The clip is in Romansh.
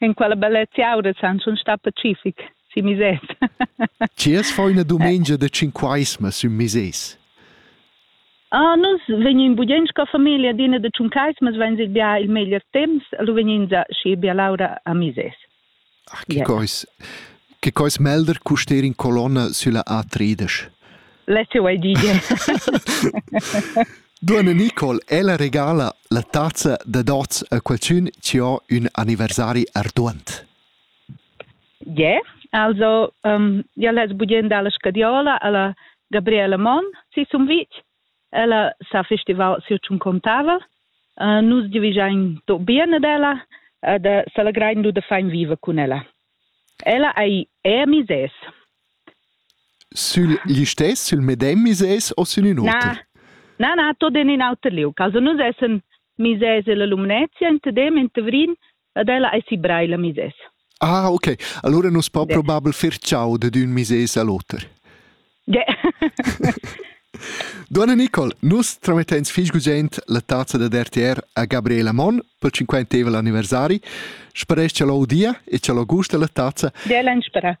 In quella bellezia aura san schon sta pacific, si misés. Tiers fa üna dumengia da tschinquaisma sün misés. Ah, nus vegnin budient sco famiglia d'ina da tschuncaismas, vain il bia il meglier temps, lu vegnins schi bia laura a misés. Ach, che cois, che cois melder custer in colonna sülla A35. La te vuoi dire. Duonna Nicole, ella regala la tazza da dots a qualchün chi ho ün anniversari arduant. Yeah, also um, ja les budien dalla scadiola alla Gabriela Monn, si sum vitg. Ella s'ha festivau siu tschun contava. nus divigein do bien ad ella e da s'allegrein du da fein viver cun ella. Ella ei er misès. Sül listess, sül medem misès o sün ün oter? Na, na, na, tot in in auter liug. Also nus essen misès ella Lumnezia, in Tedem, in Tavrin Ed ella ei si Breil a mises. Ah, ok. Allora nus po probabel fer ciao de d'ün mises al oter. Ge. Donna Nicole, nus tramettens fich gugent la tazza da RTR a Gabriela Mon pel cinquantevel anniversari. Speresc cha l'audia e cha l'Augusta la tazza. Della in spera.